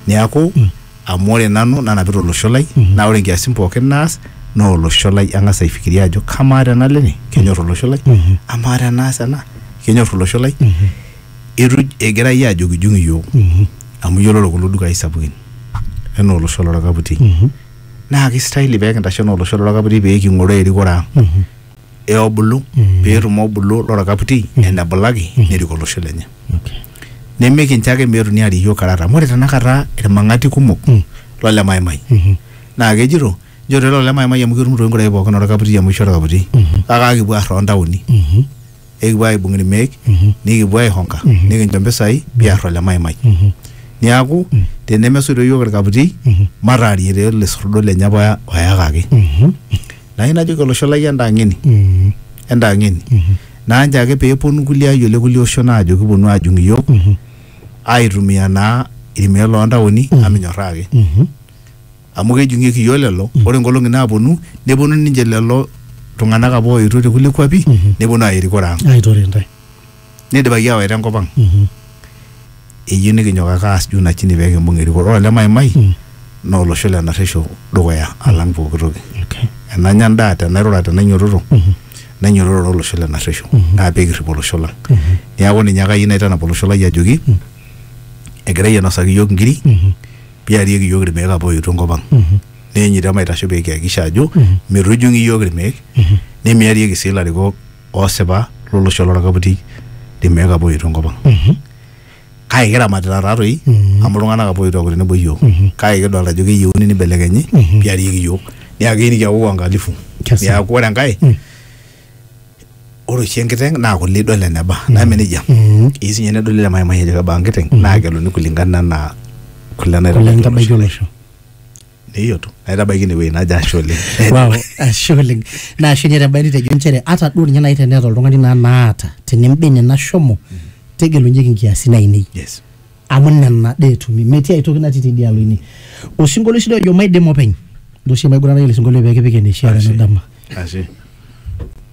Neaku mm. amu ore nanu nanapita olosho lai mm -hmm. naa ore nkiasin pookin naas naa olosho lai ang'as aifikiria ajo kamaa tenalo ene kenyor olosho lai mm -hmm. amaa tenaas ena kenyor olosho lai mm -hmm. itu egira iyie ajokijung iyiook mm -hmm. amu iyiololo kulo dukai sapukin enaa olosho lorakaputi mm -hmm. naa kistahili pekintashe enaa olosho lorakaputi peking'oroo erikore ang mm -hmm. e obulu pee etum obulu lorkaputi enebulaki nerik olosho lenye Okay. nimikincho ake meetuni arik iyiook karara amu ore tenakata irmang'ati kumok Mm. lole maimai Mhm. naa kejito nchoto ele ole maimai amu ketum toi nkurai pookin orkaputi amu eisho orkaputi Mhm. kake aakipuo aar toontaoni Mhm. ekipuo aibung irmeek nikipuo aihonka nikincho mpisai piar ole maimai niaku tenemesoito iyiook irkaputi mataarie taa ele sordo lenye apa oya- oyakaki nayieu najoki olosho lai entang'eni entang'eni naa nchoo ake peeponu kulie ayiok le kulie oshon aajo kiponu ajung iyiook aitumia naa irmeek loontaoni amu minyorraa ake amu kejung'ieki iyiook lelo ore nkolong'i naaponu neponu ninche lelo tung'anak apa ooetuo te kulie kuapi neponu aaya erikore ang aitore intae neidipaki aawaita enkop ang Mhm. eyieu nikinyok ake aas juu na chini pee kimbung erikore ore olemaimai Mm. naa olosho le narresho dukuya alang pooki toki Okay. enanya endaa tenairura tenainyototo Mhm. nainyototo olosho le narresho Mhm. naa pee kirrip olosho lang Mhm. neeku ninye ake ayieu naitanap olosho lai ajoki egirai ainosaki iyiook nkiri Mhm. piarieki iyiook irmeek apa ooetuo enkop ang neenyu te maitasho pee kihakikisha ajo meitu ejung'i iyiook irmeek nemiarieki sii ilarikok oosipa lolosho lorkaputi irmeek apa ooetuo enkop ang kake kiramatita taatoi amu iltung'anak apa ooetuo aaku tenebo iyiook kake kidolta ajo keyieuni nibelekenyi piarieki iyiook niaku keyieu nikiaku wangalifu Kesa. niaku ore enkae ore oshi enkiteng naa kule idol eneba neme nejia Mm. eyieu sinye nedoli ele maimai ajo kebaa enkiteng naa kegeluni kulingana anaa kule Kule naitabaiki nitabaiki olosho olosho. neyiolo naitabaiki ine wueji najo ashe oleng Wow, ashe oleng. Naa ashe ninye tebae nitejo nchere ata duo ninye naaji teneeta oltung'ani naa naata tenembene nashomo tegelunyeki nkiasin ainei. yes amu nena dee etumi metii aitoki natii tidialo ine osinkolio oshi doi ojo maidim openy ntoshi maiguranaki ele sinkolio pee kipik eneishiaa Ashe. tenadama Ashe.